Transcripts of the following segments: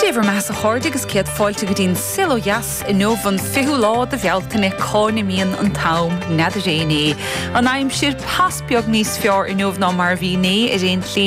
Dé bhur mbeathasa a chairde agus céad fáilte go dtí'n saol ó dheas inniu an 20ú lá de Bhealtaine cá n-imíonn an t-am n'fheadar éinne an aimsir pas beag níos feárr inniu ná mar a bhí inné ar aon tslí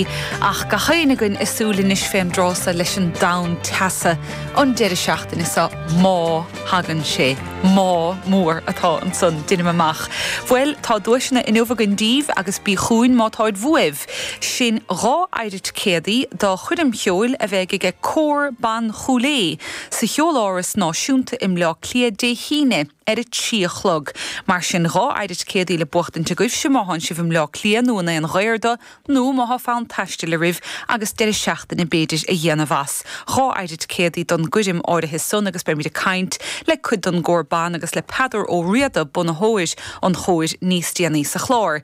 ach gach aon againn a súil anois fén dtráth so leis an dtonn teasa an deireadh seachtaine so má thagann sé má mór atá ansan deinim amach bhuel tá duaiseanna inniu againn daoibh agus bí chugainn má táid bhuaibh. Sin dhá fheidhre ticéadaí do choirm cheoil a bheidh aige Cór Ban Chúil Aodha sa Cheoláras Náisiúnta i mBleá Cliath Dé hAoine ar a trí a chlog. Mar sin dhá fheidhre ticéadaí le buachtaint agaibhse má thánn sibh i mBleá Cliath nó in aon ghaobhar dó nó má thá fonn taistil araibh agus deireadh seachtaine b'fhéidir a dhéanamh as. Dhá fheidhre ticéadaí don gcoirm áirithe san agus beimid ag caint le cuid don gCór Ban agus le Peadar Ó Riada, bunaitheoir an Chóir, níos déanaí sa chlár.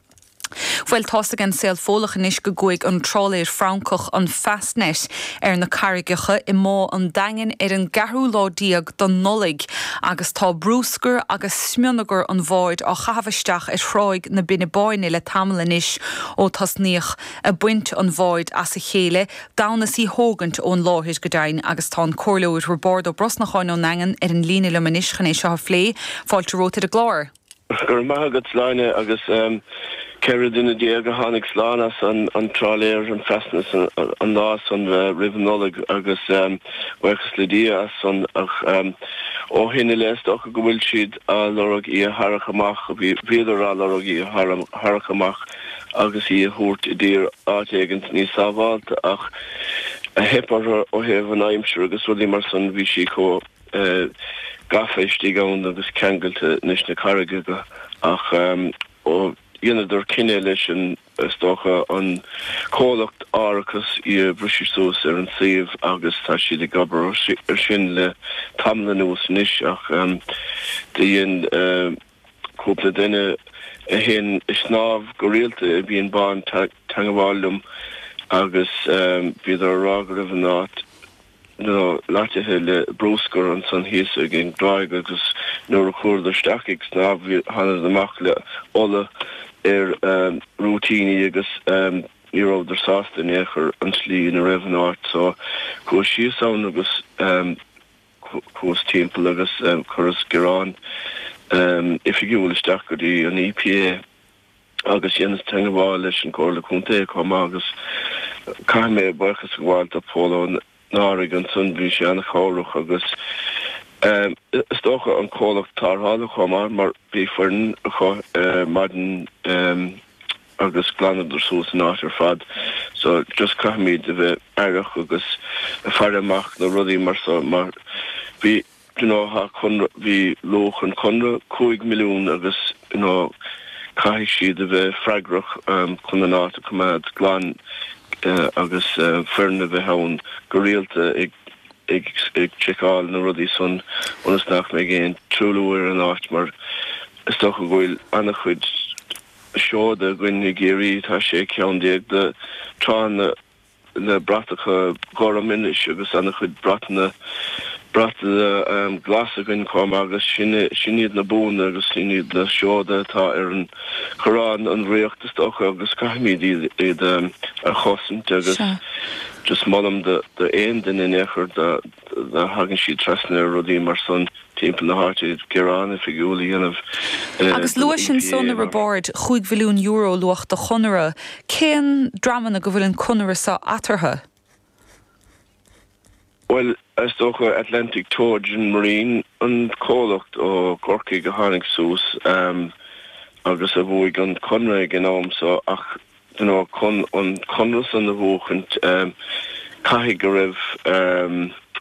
Bhuel, tá's aige an saol Fódhlach anois go gcuaigh an trálaer Francach, an Fastnet, ar na carraigeacha i mBá an Daingin ar an gceathrú lá déag don Nollaig agus tá brúscar agus smionagar an bháid á chaitheamh isteach ar Thráigh na Binne Báine le tamall anois ó tosnaíodh a' baint an bháid as a chéile d'fhonn is í thógaint ón láthair go deimhin agus tá an Comhairleoir Roibeárd Ó Brosnacháin ón nDaingean ar an líne liom anois chun é seo a phlé. Fáilte romhat ar an gclár. Go raibh maith agat Sláine agus 14 duine a tháinig slán as an trálaer, an Fastnet, an lá san roimh an Nollaig agus buíochas le Dia as san ach ó shin i leith is dócha go bhfuil siad á lorg í a tharrac amach, bhíodar á lorg í a tharrac amach agus í a thabhairt i dtír áit éigint níos sábháilte ach a theip orthu ó thaobh an aimsir agus rudaí mar san bhí sí chomh gafa istigh ann agus ceangailte leis na carraigeacha. Ach ó dheineadar cinneadh leis an, is dócha, an comhlacht árachas í a bhriseadh suas ar an suíomh agus tá siad ag obair ar sin le tamall anuas anois ach do dhein cúpla duine a théann ag snámh go rialta i mBinn Bán teangabháil liom agus bhíodar a rá go raibh an áit loitithe le brúscar ansan thíos ag an dtráigh agus nuair a chuadar isteach ag snámh thánadar amach le ola ar a rúitíní agus ní rabhadar sásta in aon chor an tslí ina raibh an áit so chuas síos ann agus chuas timpeall agus chuireas gearán oifigiúil isteach go dtí an EPA. agus dheineas teangabháil leis an gComhairle Contae chomh maith agus caithfidh mé buíochas a gabháil do Phól Ó Neáraigh ansan, bhí sé an-chabhrach agus is dócha an comhlacht tarrthála chomh maith mar bhí foireann acu ar maidin agus ghlanas suas an áit ar fad so just caithfimid a bheith aireach agus ag faire amach do rudaí mar so mar bhí gnóthach. Bhí luach an chonradh cúig mhilliún agus caithfidh siad a bheith freagrach chun an áit a choimeád glan agus foireann a bheith ann go rialta ag seiceáil na rudaí san ionas ná beidh aon truailliú ar an áit mar is dócha go bhfuil an-chuid seoda againn i gCiarraí, tá 16 ceann de tránna. le bratacha gorma anois agus an-chuid bratanna, bratainne glas againn chomh maith agus sin iad na buanna agus sin iad na seoda atá ar an gcoróin, an Ríocht is dócha agus caithfimid iad, iad a chosaint agus just molaim do aon duine in aon chor dá dtagann siad trasna ar rudaí mar san. timpeall na háite iad gearán oifigiúil a dhéanamh Agus luais ansan a Roibeaird chúig mhilliún euro luach an chonartha, cén dreamanna go bhfuil an conradh seo eatarthu? Bhuel, is dócha Atlantic Trojan Marine, an comhlacht ó gCorcaigh a tháinig suas agus a bhuaigh an conradh ag an am seo ach you know chun an conradh san a bhuachaint caithfidh go raibh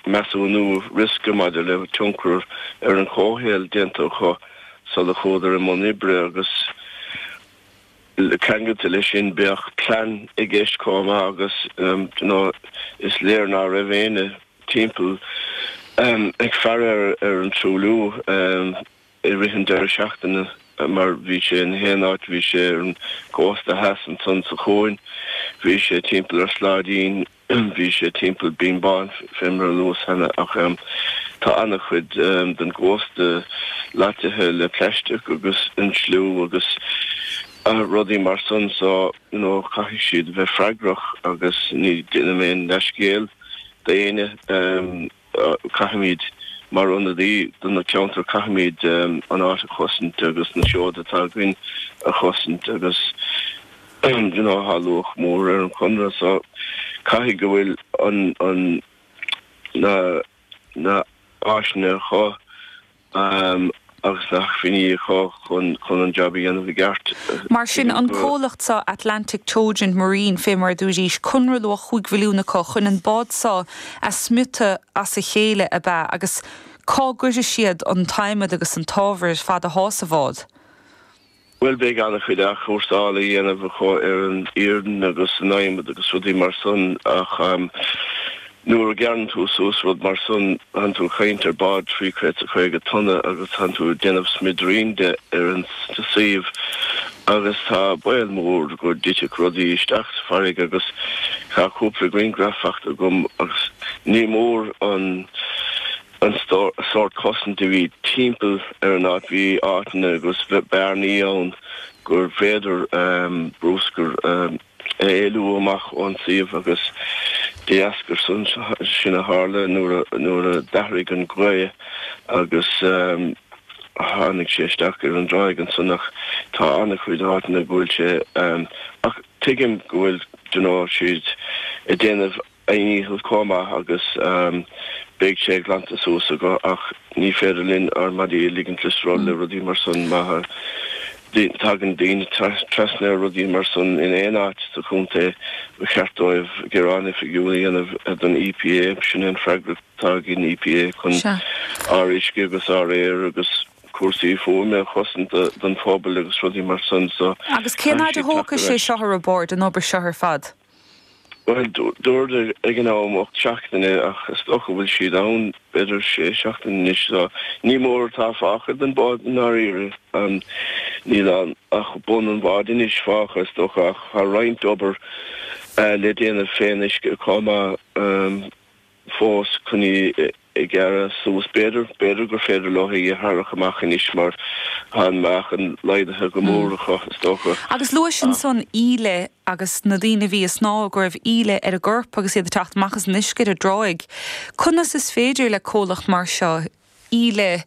measúnú riosca maidir le tionchar ar an chomhshaol déanta acu sula chuadar i mbun oibre agus ceangailte leis sin bheadh plean i gceist chomh maith agus you know is léir ná raibh éinne timpeall ag faire ar an truailliú. i rith an deireadh seachtaine mar bhí sé in gach aon áit, bhí sé ar an gcósta theas ansan sa chuan, bhí sé timpeall ar Sláidín, bhí sé timpeall Binn Bán fé mar a luas cheana ach tá an-chuid den gcósta loitithe le plaisteach agus insliú agus rudaí mar san so you know caithfidh siad a bheith freagrach agus ní déanaim aon leithscéal d'aon Caithfimid, mar ionadaí do na ceantair, caithfimid an áit a chosaint agus na seoda atá againn a chosaint agus tá luach mór ar an chonradh so caithfidh go bhfuil an, na, na, na áiseanna acu. agus na hacmhainní acu chun an jab a dhéanamh i gceart. Mar sin, an comhlacht seo, Atlantic Trojan Marine, fé mar a dúraís, conradh luach chúig mhilliún acu chun an bád seo a smiotadh as a chéile ab ea? Agus cá gcuirfidh siad an t-adhmad agus an t-ábhar ar fad atá sa bhád? Bhuel, beidh an-chuid athchúrsáil a dhéanamh acu ar an iarann agus an adhmad agus rudaí mar san ach nuair a ghearrann tú suas rud mar san, thánn tú ag caint ar bád trí chéad is caoga tonna agus thánn tú ag déanamh smidiríní de ar an suíomh agus tá baol mór go dtitfeadh rudaí isteach sa bhfarraige agus tá cúpla griangraf fachta agam agus ní mór an an sórt cosanta a bhí timpeall ar an áit. Bhí áiteanna agus bearnaí ann gur féidir bruscar a éalú amach ón suíomh agus dá dheasca san sin a tharla nuair a d'athraigh an ghaoth agus tháinig sé isteach ar an dtráigh ansan ach tá an-chuid áiteanna go bhfuil sé ach tuigim go bhfuil you know siad ag déanamh a ndícheall chomh maith agus beidh sé glanta suas acu ach ní féidir linn ár maidí a ligint le sruth le rudaí mar san má thagann daoine trasna ar rudaí mar san in aon áit sa chontae ba cheart dóibh gearán oifigiúil a dhéanamh don EPA sin an fhreagracht atá ag an EPA chun ár uisce agus ár aer agus cúrsaí fuaime a chosaint don phobal agus rudaí mar san so Agus cén fhaid a thógfaidh sé seo a Roibeard an obair seo ar fad? Bhuel, dúradar ag an am ocht seachtaine, ach is dócha go bhfuil siad ann b'fhéidir sé seachtaine anois, so ní mór atá fágtha den bhád i ndáiríre. Níl ann ach bun an bháid anois fágtha, is dócha, ach tá roinnt obair le déanamh fén uisce chomh maith. fós chun í a ghearradh suas. B'fhéidir, b'fhéidir gur féidir leo í a tharrac amach anois mar tá an meáchan laghdaithe go mór acu, is dócha. Agus luais ansan, íle agus na daoine a bhí ag snámh, go raibh íle ar a gcorp agus iad ag teacht amach as an uisce ar an dtráigh. Conas is féidir le comhlacht mar seo íle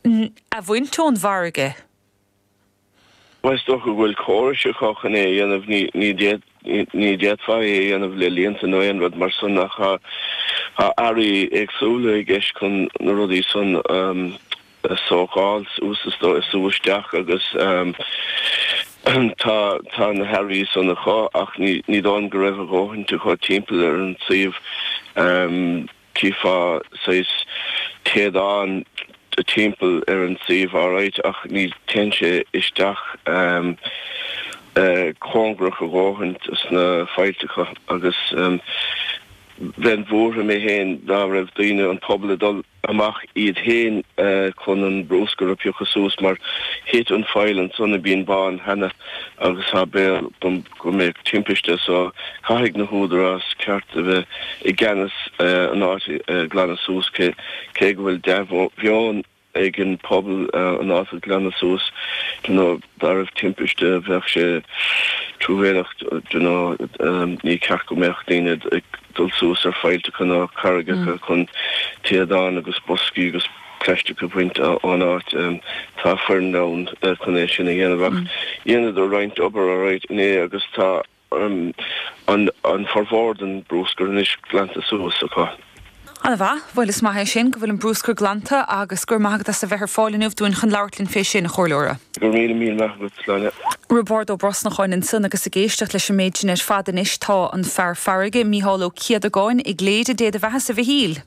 a bhaint ón bhfarraige? Is dócha go bhfuil córais acu chun é a dhéanamh, ní d'fhéadfá é a dhéanamh le líonta nó aon rud mar san ach tá earraí éagsúla i gceist chun na rudaí san a sócáil, sú isteach agus tá na hearraí san acu ach ní dóigh liom go raibh a dhóthain acu timpeall ar an suíomh. Chífeá saghas téadán timpeall ar an suíomh alright ach ní théann sé isteach cóngarach a dhóthain sna faillteacha agus bheinn buartha mé féin dá raibh daoine an pobal ag dul amach iad féin chun an bruscar a phiocadh suas mar thit an faill ansan i mBínn Bán cheana agus tá baol go mbeidh timpiste so caithfidh na húdaráis ceart a bheith i gceannas ar an áit a ghlanadh suas, cé go bhfuil dea-mheon ag an pobal an áit a ghlanadh suas, you know dá raibh timpiste bheadh sé truamhéileach you know ní ceart go mbeadh daoine ag dul suas ar faillteacha ná carraigeacha chun téadán agus boscaí agus. plaisteach a bhaint ón áit. Tá foireann ann chun é sin a dhéanamh ach dheineadar roinnt obair arú inné agus tá an formhór den bhrúscar anois glanta suas acu. Ana mhaith. Bhuel is maith é sin go bhfuil an brúscar glanta agus go raibh maith agat as a bheith ar fáil inniu dúinn chun labhairt linn fé sin, a Chomhairleoir. Go raibh míle míle maith agat, Áine. Roibeárd Ó Brosnacháin ansan agus ag éisteacht leis an méid sin ar fad anois tá an fear farraige, Mícheál Ó Céadagáin, i gCléire. Dé do bheathasa a Mhichíl!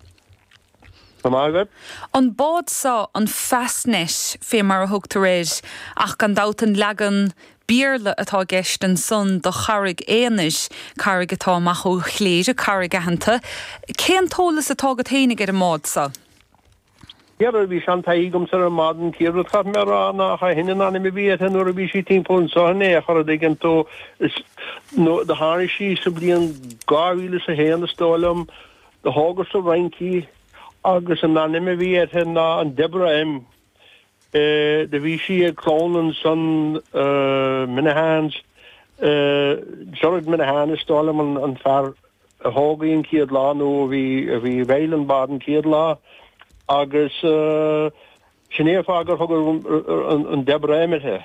Go raibh maith agat. An bád so, an Fastnet, fé mar a thugtar air, ach gan dabht an leagan Béarla atá i gceist ansan do Charraig Aonair, carraig atá amach ó Chléire, carraig aitheanta. Cén t-eolas atá agat fhéinig ar an mbád so? Ara bhí seantaithí agamsa ar an mbád an chéad rud a chaithfidh mé a rá ná nach shin an ainm a bhí uirthi nuair a bhí sí timpeall anso in aon chor a' dtuigeann tú is, nó do tháinig sí sa bhliain dhá mhíle is a haon is dóigh liom, Do tógadh sa Fhrainc í agus an ainm a bhí uirthi ná an Deborah M. Do bhí sí ag clann ansan, Minihanes, Gerard Minihane is dóigh liom an fear a thóg í an chéad lá nó a bhí a bhí i bhfeighil an bád an chéad lá agus sin é an fáth gur tugadh an Deborah M uirthi.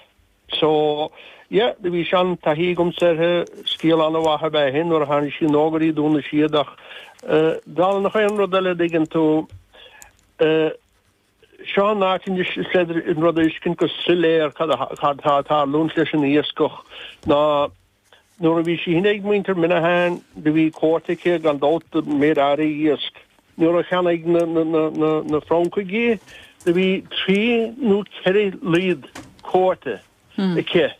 So, yeah, bhí seantaithí agamsa uirthi, scéal an-mhaith ab ea é nuair a tháinig sí nua go dtí Dún na Séad ach dála nach aon rud eile a dtuigeann tú eh, seo an áit anois is féidir an rud a fhiscint go soiléar cad a cad tá ag tarlúint leis an iascach ná Nuair a bhí sí cheana ag muintir Minihane, do bhí cuóta aici gan dabht ar méid áirithe iasc. Nuair a cheannaigh na Francaigh í, do bhí trí nó ceithre oiread cuóta aici,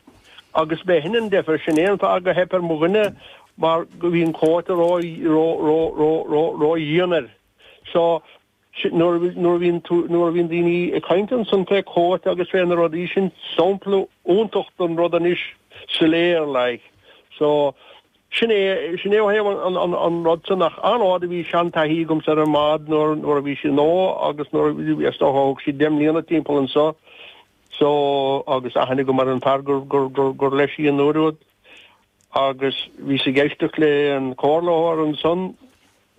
agus ba shin an deifir, sin é an fáth gur theip ar mo dhuine mar go bhí an cuóta ró-dhian air. Nuair a bhíonn daoine ag caint ansan fé chuóta agus fé na rudaí sin, sampla iontach den rud anois soiléir like. So, sin é, sin é ó thaobh an rud san, ach an fhaid a bhí seantaithí agamsa ar an mbád nuair a bhí sí nua agus nuair a bhí, is dócha a thug siad deich mbliana timpeall anso, so, agus aithne agam ar an bhfear gur leis í an uair úd agus bhíos ag éisteacht le an comhairleoir ansan,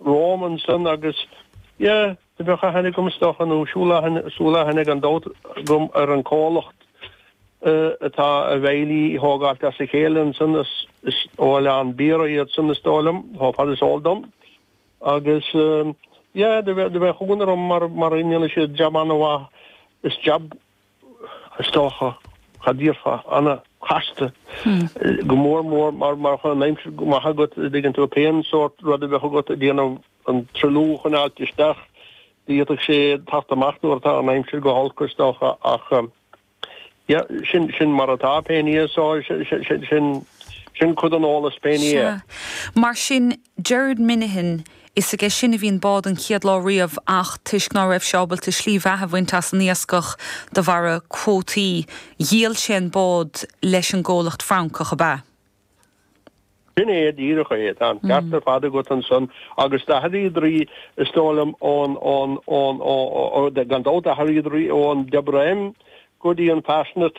Rawlinson agus, yeah, do bheadh aithne agam stoth nó súil aithne gan dabht agam ar an comhlacht atá a bhfeighlí thógáilt as a chéile ansan is ó Oileán Biorra iad san is dóigh liom, ó fad is eol dom. Agus, yeah, do bheadh chuimhne agam mar go ndéanann siad jab ana-mhaith is jab. Is dócha gur jab ana-chasta, go mór mór mara mbíonn an aimsir go maith agat, dtuigeann tú, pén sórt rud a bheadh agat a' déanamh an truailliú a choinneáilt isteach, d'fhéadfadh sé theacht amach nuair atá an aimsir go holc is dócha ach yeah, sin, sin mar atá pé in Éirinn é so sin, sin cuid den eolas pé in Éirinn é. Sea. Mar sin, Gerard Minihan, Is aige sin a bhí an bád an chéad lá riamh ach toisc ná raibh sé ábalta slí bheatha a bhaint as an iascach de bharra cuótaí, dhíol sé an bád leis an gcomhlacht Francach ab ea. Sin é, díreach é. Tá an ceart ar fad agat ansan. Agus d'athraíodar í, is dóigh liom, ón, ón, ón, ó, ó, gan dabht, d'athraíodar í ón Deborah M go dtí an Fastnet.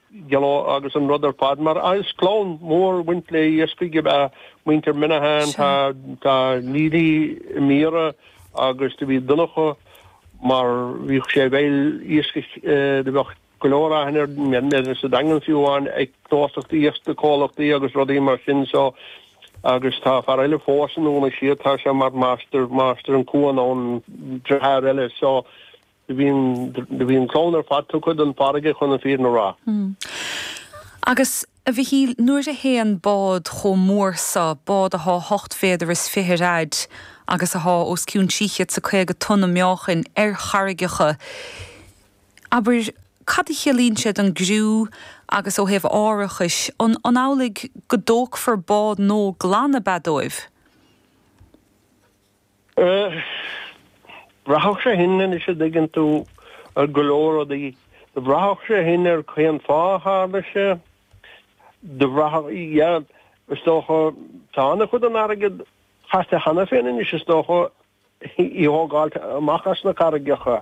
Gelo agus an rud ar fad, mar is clann mhór bhaint le iascach ab ea muintir Minihan. Tá Neilí i mBiorra agus do bhí Donnchadh mar bhíodh sé i bhfeighil iascaigh, do bheadh go leor aithne air sa Daingean fiú amháin ag gnóthachtaí iasc, comhlachtaí agus rudaí mar sin so agus tá fear eile fós i nDún na Séad, tá sé mar máistir, máistir an cuan ann, deartháir eile so. Do bhí an do bhí an clann ar fad tugtha don farraige chun an fírinne a rá. Agus, a Mhichíl, nuair a théann bád chomh mór san, bád athá hocht mhéadar is fiche ar fhaid agus athá os cionn trí chéad is caoga tonna meáchain, ar charraigeacha, abair, cad a chiallaíonn sé don gcriú agus ó thaobh árachais? An amhlaidh go dtógfar bád nódh glan ab ea dóibh? Bhraithfeadh sé shin, anois a dtuigeann tú, ar go leor rudaí. Bhraithfeadh sé shin ar cén fáth a tharla sé. Bhraithfeadh, yeah, is dócha, tá an-chuid den airgead caite cheana féin anois, is dócha, í a thógáilt amach as na carraigeacha.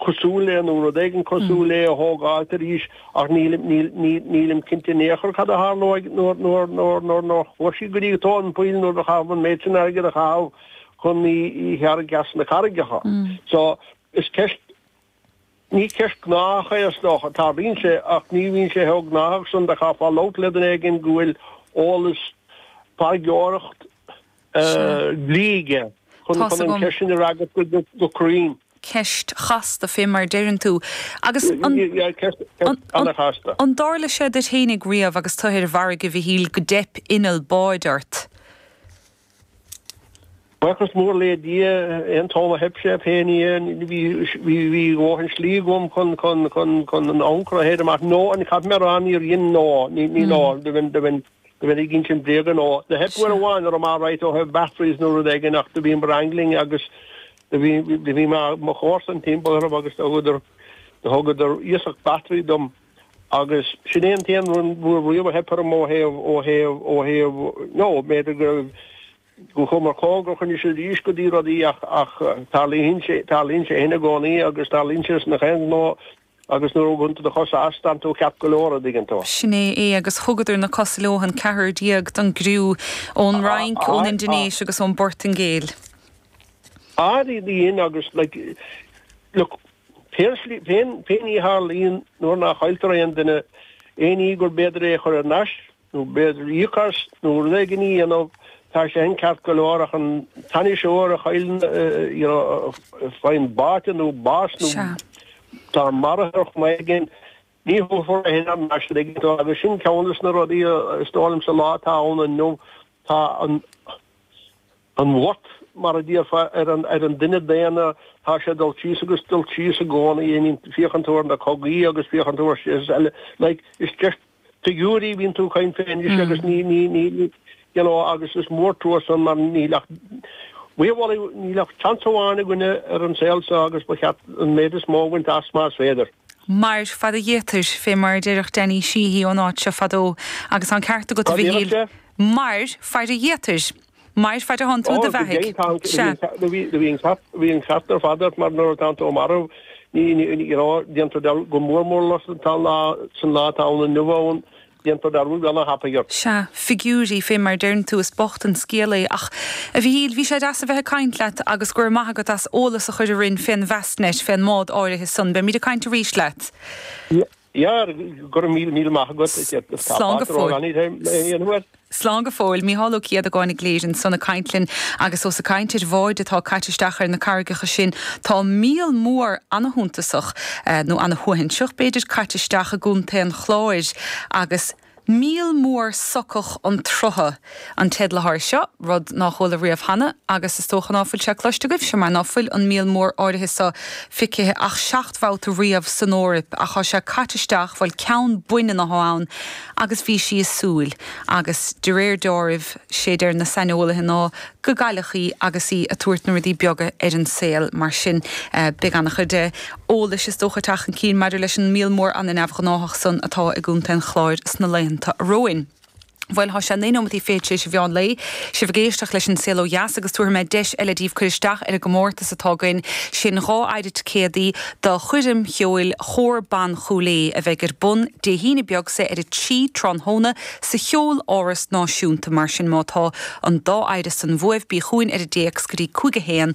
cosúil le, nó rud éigin cosúil le, a thógáilt arís, ach nílim cinnte in aon chor cad a tharlóidh nuair nár chuaigh sí go dtí tóin poill, nuair a caitheadh an méid sin airgid a chaitheamh chun í a tharrac as na carraigeacha. So, is ceist, ní ceist gnách é, is dócha. Tarlaíonn sé, ach ní bhíonn sé chomh gnách san. Chaithfeá labhairt le duine éigin go bhfuil eolas, farraigeoireacht, dlí aige chun an cheist sin a fhreagairt go cruinn. Ceist chasta, fé mar a deireann tú. Agus an. Ceist an-chasta. An dtarla sé duit féinig riamh agus tú ar an bhfarraige, a Mhichíl, go dteip inneall báid ort? Buíochas mór le Dia, aon t-am a theip sé, pé ní, bhí dóthain slí agam chun an ancaire a chaitheamh amach. Nó, caithfidh mé a rá, níor dhein, ná, ní, ná, do bheinn, do bheinn, go mbeinn ag insint bréag ar ndóigh do theip uair amháin orm alright ó thaobh batteries nó rud éigin ach do bhíomair angling agus do bhí do bhí mo mo chomharsain timpeall orm agus do thugadar do thugadar iasacht battery dom agus sin é an t-aon uair riamh a theip orm ó thaobh ó thaobh ó thaobh nó b'fhéidir go gcuamar cóngarach anois is arís go dtí rudaí ach ach tarlaíonn sé tarlaíonn sé shin i gcónaí agus tarlaíonn sé sna chéad nó Agus nuair a thugann tú do chosa as, tánn tú ceart go leor, an dtuigeann tú. Sin é é, agus thugadar na cosa leo, an ceathrar déag, don gcriú ón Fhrainc, ón Indinéis agus ón bPortaingéil. Fhad i gcéin, agus like, look, pé slí, pé ní a tharlaíonn, nuair nach gcailltear aon duine, aon ní gurb fhéidir é a chur thar n-ais, nó b'fhéidir íoc as, nó rud éigin a dhéanamh, tá sé sin ceart go leor, ach an t-ainniseoir a chailleann, you know, faigheann báite nó bás nó Sea. tá maraithe ar chuma éigin, ní thabharfar thar n-ais, an dtuigeann tú, agus sin ceann de na rudaí, is dóigh liom, sa lá atá ann inniu, tá an, an worth, mar a déarfá, ar an, ar an duine daonna, tá sé ag dul síos agus ag dul síos i gcónaí, I mean, féachann tú ar na cogaí agus féachann tú ar, like, is just, figiúirí a bhíonn tú ag caint fé anois agus ní, ní, ní, ní, you know, agus is mór an trua san mar níl ach, we have only, níl ach seans amháin againne ar an saol seo agus ba cheart an méid is mó a bhaint as más féidir. Mair fad a fhéadfair, fé mar a déarfadh Danny Sheehy ón áit seo fadó, agus tá an ceart agat, a Mhichíl, mair fad a fhéadfair. Mair fad atánn tú i do bheathaidh. Sea. Bhí an ceart ar fad agat mar nuair atánn tú marbh déantar dearúd go mór mór leo san lá atá ann inniu ann déantar dearúd go hana-thapaidh ort. Sea. Figiúirí fé mar a deireann tú is bocht an scéal é ach, a Mhíchíl, bhí sé deas a bheith ag caint leat agus go raibh maith agat as eolas a chur orainn fén bhFastnet, fén mbád áirithe san. Beimid ag caint arís leat. Á, go raibh míle, míle maith agat. Slán go fóill. Slán go fóill. Mícheál Ó Céadagáin i gCléire ansan ag caint linn agus ós ag caint ar bháid atá caite isteach ar na carraigeacha sin tá míol mór an-shuntasach, nó an-shuaithinseach b'fhéidir, caite isteach i gContae an Chláir agus, Míol mór socach an tsrutha an teideal atá air seo, rud ná chuala riamh cheana, agus is dócha ná fuil sé cloiste agaibhse, mar ná fuil an míol mór áirithe so feicthe ach seacht mbabhta riamh san Eoraip, ach tá sé caite isteach, bhuel, ceann baineann athá ann, agus bhí sí ag súil, agus de réir dealraimh, sé deir na saineolaithe ná gur cailleadh í agus í ag tabhairt na rudaí beaga ar an saol, mar sin, beidh ana-chuid. eolais is dócha teacht chun cinn maidir leis an míol mór an-neamhghnáthach san atá i gContae an Chláir sna laethanta romhainn. Bhuel, tá sé naoi nóimeataí fichead tar éis a mheán lae. Sibh ag éisteacht leis An Saol Ó Dheas agus tabharfaidh mé deis eile daoibh cur isteach ar an gcomórtas atá againn, sin dhá fheidhre ticéadaí do choirm cheoil Chór Ban Chúil Aodha a bheidh ar bun Dé hAoine beag so ar a trí tráthnóna sa Cheoláras Náisiúnta. Mar sin má tá an dá fheidhre san bhuaibh bí chugainn ar an dtéacs go dtí cúig a haon